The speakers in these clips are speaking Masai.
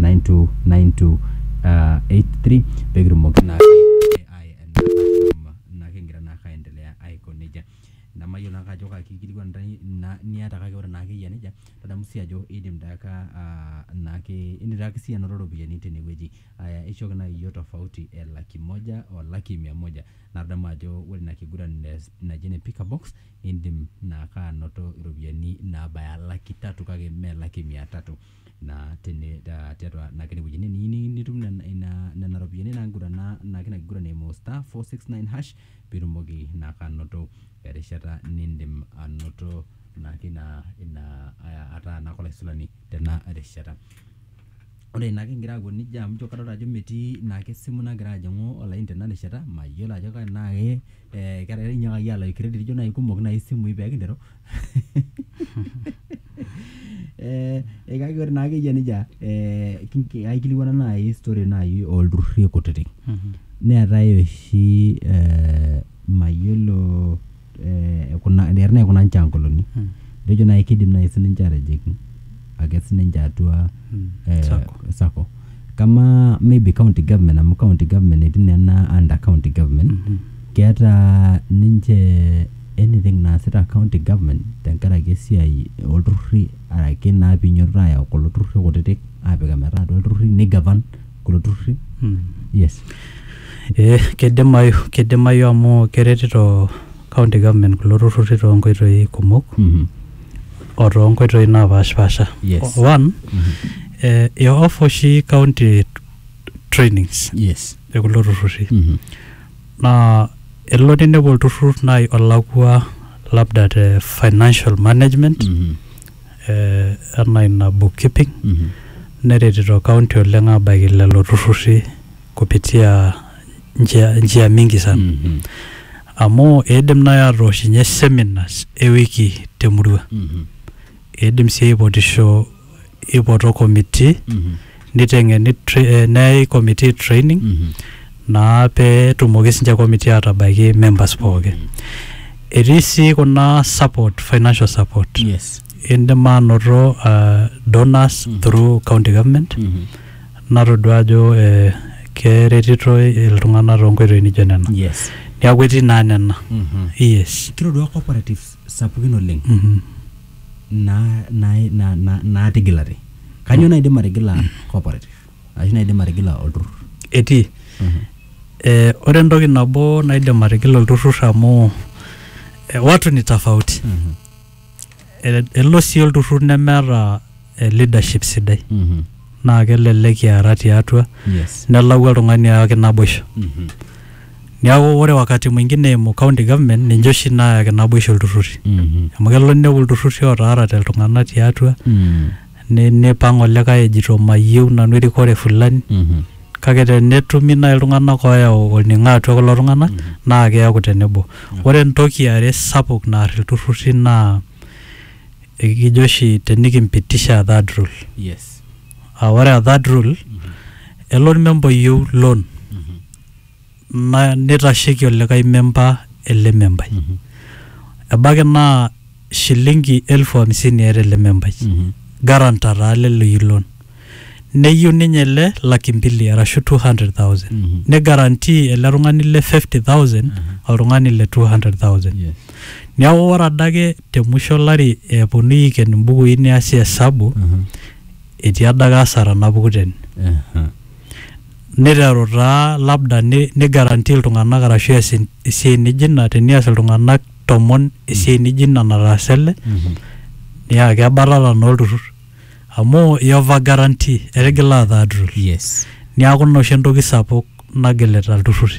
929283 pee kitumoki naa kigira naa ake aendelea aiko nejia. Nemayiolo naa ake ajo kaa kikilikuan niata kake ore naa ake eyia nejia tadamu sii ajo idim taa ake naake idim taa ake siyie anoto iropiyiani tene wueji. Aya eishooki naaji iyiook tofauti e laki moja o laki mia moja. Naa tadamu ajo ore ina kiguran naji ene pick a box idim naa ake anoto iropiyiani naabaya laki tatu kake mme laki mia tatu. naa tene ta tiatua naa kene wueji. Teniyiu ni nitum nena ina nena ropiani naigurana naa kina kiguran eimu star four six nine hash piitumoki naake anoto erishata niindim anoto naake ina ina aa ataa naake olaisulani tena rishata. Ore naake ing'ira aiko neija amu ijo kadolta ajo metii naake esimu nagira ajing'u olaini tena rishata, mayiolo ajo tenaa ke ee ketaa inyiakaki aalayu credit ijo nai kumok nai isimui pee kinteru. Eeh kake ore naake eyia neija eeh aikilikuana naai history naai olturrurri kutiti. Neetae oshi eeh mayiolo eeh eton eitu naa eikunaa nchoo enkolong'i. Etejo naai kiidim naai siininche aatijing ake sininche atua eh, Sacco. sacco kama maybe county government amu county government etii nena under county government keeta ninche anything naasita county government tenkaraki esiai olturruri araki naa pinyototo ayau kulo turruri kutitik apik ometaa atua ilturruri nigavan kulo turruri Mm. yes Eh, kidimayu kidimayu amu keretito county government kulo turruri toonkoitoi kumok Mhm. o too nkoitoi naapashipasha. Yes. One, eh, i offer oshi county trainings Yes. e kulo turrurri. Mhm. Naa elo ninepu olturrur nai olakua labda te financial management Mhm. eh, enaa ina bookkeeping Mhm. neretito county oleng abaiki lelo turrurri kupitia njia, njia mingi sana. Mhm. Amu eidim naaji atooshinye seminars e wiki te murua. Eidim sii aipotisho eipoto committee neiteng'eni neyai committee training naa pee etumoki sii ninche committee aatabaiki members pooki. Etii sii kuna support, financial support. Yes. Eidim aanoto donors through county government. natodua ajo eh, keretitoi iltung'anak toonkoitoi nijo nena yes niaku etii naa nena Mhm. yes kitodua cooperatives sapukin oleng Mhm. naa- naa- naa- naa- naatigilate kanyoo naidim atigila cooperative ashu naidim atigila olturrur etii eh, ore entoki nabo naidim atigila olturrur amu eh, watu ni tofauti Mhm. E- elo sii olturrur nemeeta eh, leadership sidai Mhm. naa kelelek kiara tiatua Yes. nelau oltung'ani ayaki naboisho Mhm. niaku ore wakati mwingine eimu county government ninche oshi naayaki naboisho ilturruri Mhm. amu kelo ninepu ilturruri ootaarate iltung'anak tiatua Mm. Ni- nipang olikae ejito mayieu nanu erikore fulani Mhm. kake tenetumi naaji iltung'anak ooyau olning'o atua kulo tung'anak naa keeku tenebo ore entoki are sapuk naar ilturrurri naa ekijo oshi tenikimpitisha third rule Yes. aa ore a third rule elo ormemba oyieu loan na- neitasheiki olikae memba ele membai ebaiki naa shilingi elfu hamsini eeta ele membai garanta taa lelo ilon neyieu ninye ele laki mbili arashu 200,000 Mhm. ni guarantee ele tung'ani le 50,000 oltung'ani le 200,000 Yes. neeku ore adake te musho olari eponunui aiken imbukui neasi hesabu Mhm. etii adake asara napuku tene Aha. Neiteru taa labda neigarantii iltung'anak arashu eas esiai nijo ina tenias iltung'anak tomon esiai nijo ina nataasa ele naa kebatata naa olturrur amu iyova guarantee etigila ataa aturrur. Yes. Niaku ina oshi entoki sapuk nagilita ilturruri.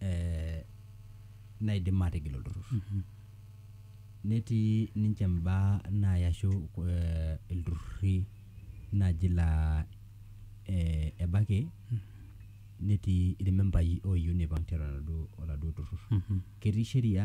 eh, naidim atigil olturrur netii ninche imbaa naaya ashu eh, ilturrurri naaji laa eh, ebaiki netii irmembai oyieu neipang tiatua oladuo, oladuo turrur ketii sheria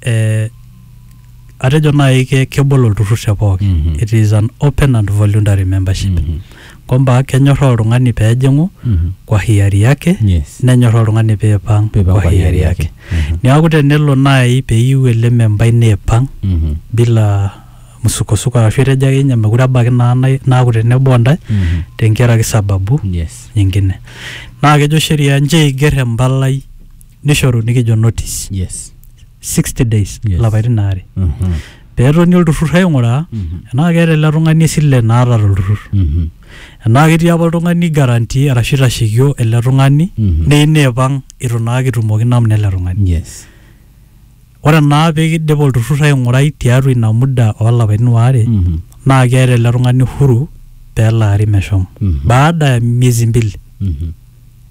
eh, atejo naaji ke- kebol olturrur te pooki Mhm. it is an open and voluntary membership Mhm. kwamba kenyorraa oltung'ani peejing'u Mhm. kwa hiari yake Yes. nenyorraa oltung'ani peipang Peipang kwa hiari yake Mhm. niaku tenelo naaji peyieu ele membai neipang Mhm. bila msukosuko arashu etejo ake ninye mekure ebaiki naa nai- naaku tenebo ontae Mhm. tenkaraki sababu Yes. nyingine naa kejo sheria nche eiger empalai nishoru nikijo notice yes 60 days Yes. lapaitin aare Mhm. peetoni olturrur aing'uraa Mhm. enaa keeta ele tung'ani esile naata tolturrur Mhm. enaa ketii apa oltung'ani garanti arashu itashekio ele tung'ani Mhm. neyieu neipang itu naa kitumoki namna ele tung'ani yes ore naa peekidip olturrur aing'urai tiatua ina muda oolapaitin waare Mhm. naa keeta ele tung'ani huru peelaari meshomo Mhm. baada ya miezi mbili Mhm.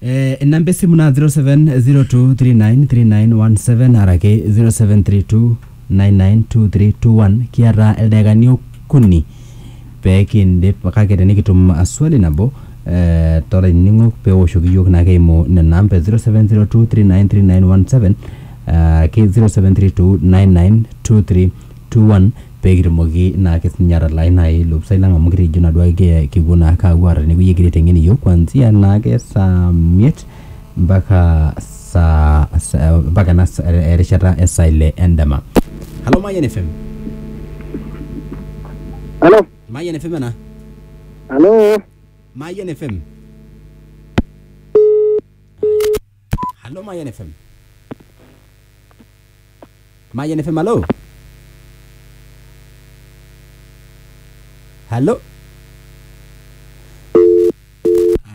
Eh, inamba esimu naa 0702393917 araki 0732992321 kiata ildaikani okuni pee kindip kake tenikitum ah, swali nabo eh, tolainining'ok pee ewoshoki iyiook naake eimu nena amba e 0702393917 araki 0732992321 pee kitumoki naake sininye atalaai nai ilopisai lang' amu kitejo naa duo ake kepuo naake aapuo aara tene wuei egira aiteng'en iyiok kuanzia naake saa miet mpaka saa saa mpaka ena saa erishata e saa ile endama. Halo Mayian FM, Halo. Mayian FM ena, Halo. Mayian FM. Hallo Mayan FM. Mayan FM, hallo. Hallo.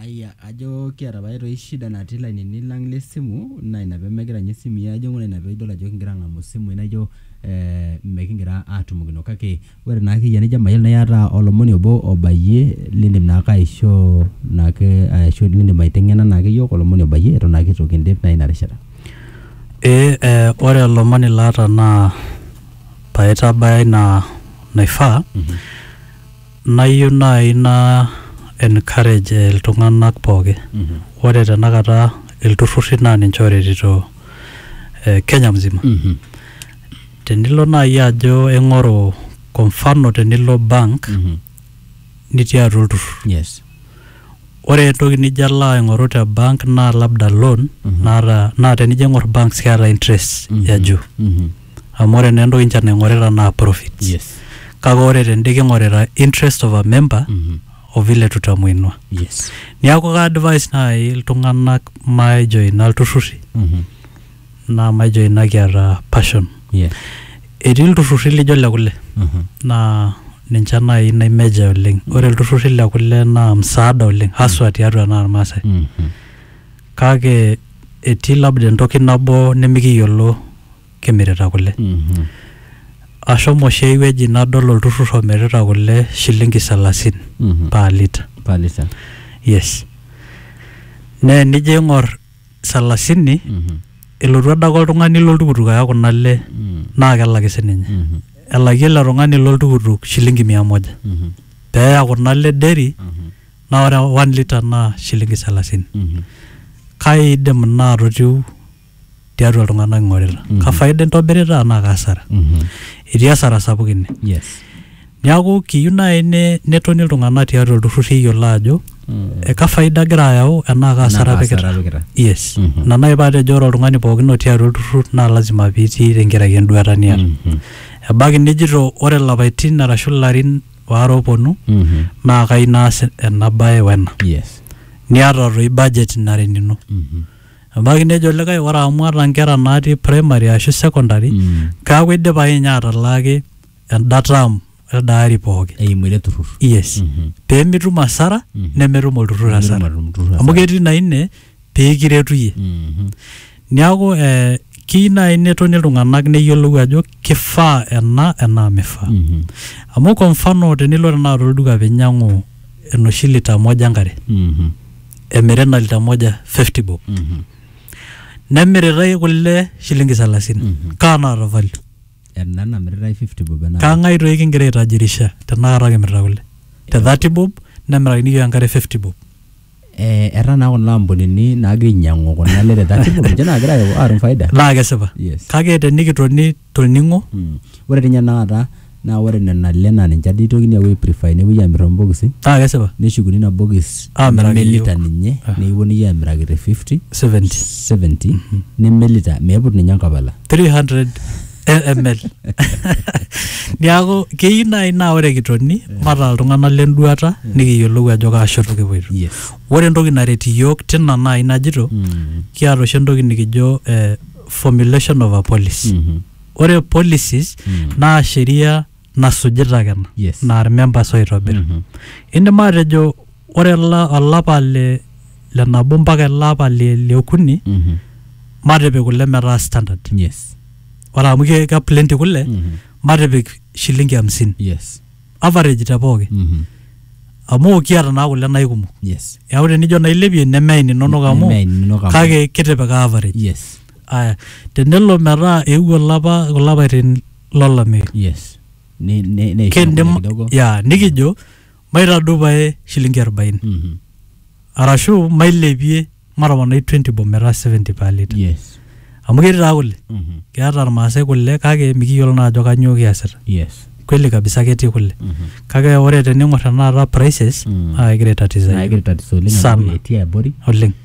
Aya, ajo kiata pae toi shida natii lainini lang le simu naa ina pemegira nye simui ajing'u naa ina pidol ajo kigira ang'amu simui naijo eh, mekigira atumokino kake Ore naa ake iyie tenijo mayiolo iyata olomoni obo obayie lindim naake aishoo naake ashu lindim aiteng'ena naake iyiok olomoni obayie eton naake itu kindip naa ina rishata. Ee eh ore olomoni laata naa paitabaya ina naifaa nayieu nai naa encourage iltung'anak pooki. Ore tenakata ilturrurri naa ninche oretito eh Kenya mzima. Tenilo naaji ajo ing'oru kwa mfano tenilo bank Mhm. nitii atua olturrur. Yes. Ore entoki nijo alo aing'oru te bank naa labda loan Mhm. naata naa tenijo aing'or banks keeta interest Mhm. ya juu. Mhm. Amu ore naa entoki ninche naing'orita naa profits. Yes. Kake ore tende king'orita interest of a member Mhm. o vile tutamuinua. Yes. Niaku ka advise naaji iltung'anak majoina ilturruri Mhm. naa maijo ina kiata passion. Yeah. Etii ilturrurri lijo le kule Mhm. naa ninche naaji naimeja oleng. Ore ilturrurri le kule naa msaada oleng haswa tiatua naa Irmaasai. Mhm. Kake etii labda entoki nabo nimikiyiolo kimirita kule. Mhm. Ashomo oshi ai wueji nadol olturrur omirita kule shilingi salasini Mhm. per litre. Per litre. Yes. Naa enijo aing'or salasini elotu adake oltung'ani loltukutuk aya kuna le naa kelaki sininye elaki ele tung'ani loltukutuk shilingi mia moja peeya kuna le deri naa ore one liter naa shilingi salasini kaidim ina atotiu tiatua iltung'anak ing'orita kafaida intobirita anaa kasara etii asara sapuk ine yes Neaku kiyieu naaji netoni iltung'anak tiatua ilturrurri eyiolo aajo eka faida agira ayau enaa kaa hasara apikita. Yes. Ina naaji paatejo ore oltung'ani pookin otii atua olturrur naa lazima piitii tenkaraki enduata niata. Ebaiki nijito ore ilapaitin arashu ilarin waare oopwonu naa kayieu naas ena bae wena. Niata doi budget nara enino. Ebaiki nejo likae ore amu aata inkera naatii primary ashu secondary, keeku idipa akeninye atalaaki enda term eda ari pookin eimu ele turrur yes Mhm. pee mitum hasara Mhm. nemetum olturrur Nemetum hasara olturrur hasara. amu ketii na ine pee kiretu iyie Mhm. niaku eh, kiyieu naaji netoni iltung'anak neyiolou ajo kifaa ena enaa mifaa Mhm. amu kwa mfano tenilo tenakata olduka pinyiang'u enoshi lita moja enkare Mhm. emiri ena lita moja 50 bob Mhm. nemiritae kule shilingi salasini Mhm. kaa naata value ena namiritae 50 bob ena kang'ae toi kingira aitajirisha tenakata kimirita kule te 30 bob nemirakini iyiook enkare 50 bob eh, etaa naa kuna ampunini naagira ainyiang'u kuna ale te 30 bob ninche naagira aayau- aatum faida naa kesipa Yes. kake tenikitoni toning'o Mm. ore tinye tenakata naa ore nena ale naa ninche ade itokini aapuo aiprifai nepuoi aamir tombokisi naa kesipa neshukuni ina bokis Aamiraki nemelita iyiook. ninye Ah. nikiponunui aamiraki te 50 70 70 nemelita meiput ninye enkapala 300 ml niaku keyieu naaji naa ore kitoni mataa iltung'anak lenduata nikiyiolou ajo kaa shoto kipuoito yes ore entoki naret iyiook tina naaji najito Mm. kiata oshi entoki nikijo eh, formulation of a policy Mhm. ore policies Mm. naa sheria nasujita ake ena Yes. naa irmembers oitobir Mhm. indim atejo ore ola- olapa le le nabo mpaka ele apa le le okuni Mhm. matipik kule metaa standard yes ore amu ke ke plenty kule Mhm. matipik shilingi hamsini yes average te pooki Mhm. amu kiata naa kule naikumok yes eeku tenijo nailepie nemeain inonok amu Nemeain inonok amu- kake kitipika average yes aya tenelo metaa eewuo olapa kulo apaitin lolameyu yes Ni- ni- neisho kindim kidogo. ya nikijo maitadou pae shilingi 40 Mhm. arashu mailepie matoponai 20 bob metaa 70 per liter yes amu ketii taa kule Mhm. keeta irmaasai kule kake mikiyiolo naa ajo kanyoo kiasita yes kweli kabisa ketii kule Mhm. kake ore tening'or tenakata prices Mm. naa kegira aitatisa naa yiok. egira tatizo oleng Sana. amu etii abori oleng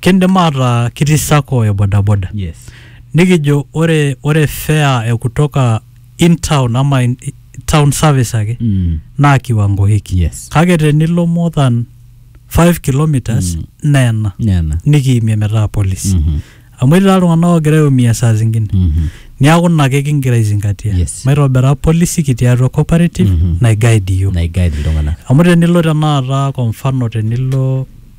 Kindim ataa kitii sacco e bodaboda Yes. nikijo ore ore fare e kutoka in town ama in, town service ake Mm. naa kiwango hiki Yes. kake tenilo more than 5 kilometers Mm. naa ena Nena. nikiimie metaa polisi Mhm. amu etii taa iltung'anak oogira aiumia saa zingine Mhm. niaku ina ake kingira aizingatia Yes. maitobira polisi kitii atua cooperative Mhm. naiguide iyiok Naiguide iltung'anak. amu tenilo tenakata kwa mfano tenilo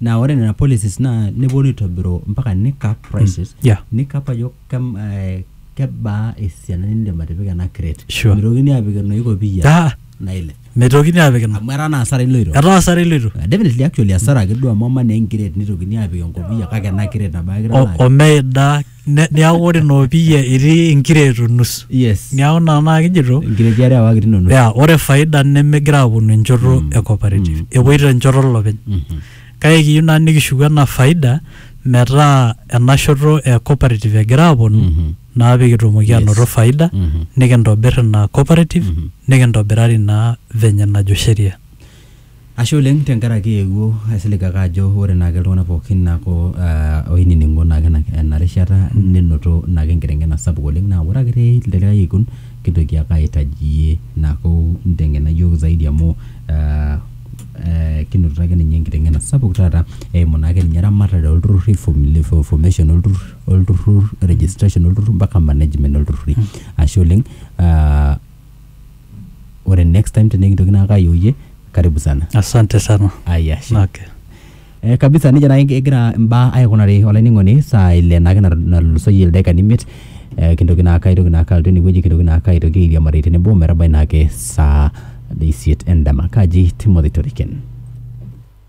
naa ore nena policies naa neponu aitobiru mpaka nicap prices yeah. nicap ajo kem, eh, kebaa esiana nindim atipika ena crate Sure. mitokini apik enoshi kopiyia Ah, nailep mitokini apik ina amu etaa naa asara iloito etaa asara iloito Uh, definitely actually asara ake duo amu ama naa enkret nitokini apik enkopiyia kake ena kret nabo ake O- italaa. omeida Ne- neaku ore noopiyia etii inkireeto nusu yes neaku naa naa kijito nkireti are awaki tinono ya ore faida nemegira aponu enchoto e cooperative epoito enchoto olopeny kake kiyieu naa nikishuku ena faida metaa ena shoto e cooperative egira aponu naa pikitumoki anoto faida nikintobir ina cooperative nikintobirari naa venye najo sheria Ashe oleng tenkaraki eewuo aisilig ake ajo ore naake iltung'anak pookin naaku aah oinining'o naake ena rishata nenoto naake enkiteng'ena sapuk oleng naa ore ake te likae kekun kintoki ake aitaji iyie naaku nteng'ena iyiok zaidi amu aah eeh kinotito ake ninye enkiteng'ena sapuk taata eimu naake ninye ramatare oo lturruri fom le formation oo lturrur oo lturrur registration oo lturrur mpaka management oo lturruri. Ashe oleng aah ore next time tenikintoki naake ayieu iyie karibu sana asante sana ayashe okay. Eh, kabisa nejia naake egira imbaa aikunari olainining'oni saa ile naake nat- natulusoyie ildaikani imiet eh, kintoki naake aitoki naake alotu enewueji kintoki naake aitoki airiamari tenebo metabai naake saa isiet endama kaji Timothy Toriken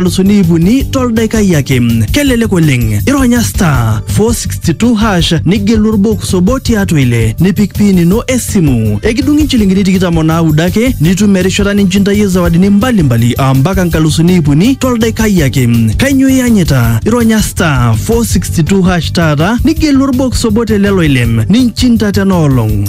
nkalusuni iip uni toldaikai ake. Kelelek oleng, ironya star 462 hash nigelu orbox obo tiatua ile nipik pin ino esimu. Ekidung'i nchilingini tikitam o naudo ake nitum erishata ninchintayie zawadini mbalimbali aa mpaka nkalusuni iip uni toldaikai ake. Kainyoo iyanyita? Ironya star 462 hash taata nigelu orbox obo te lelo ile ninchinta tena olong.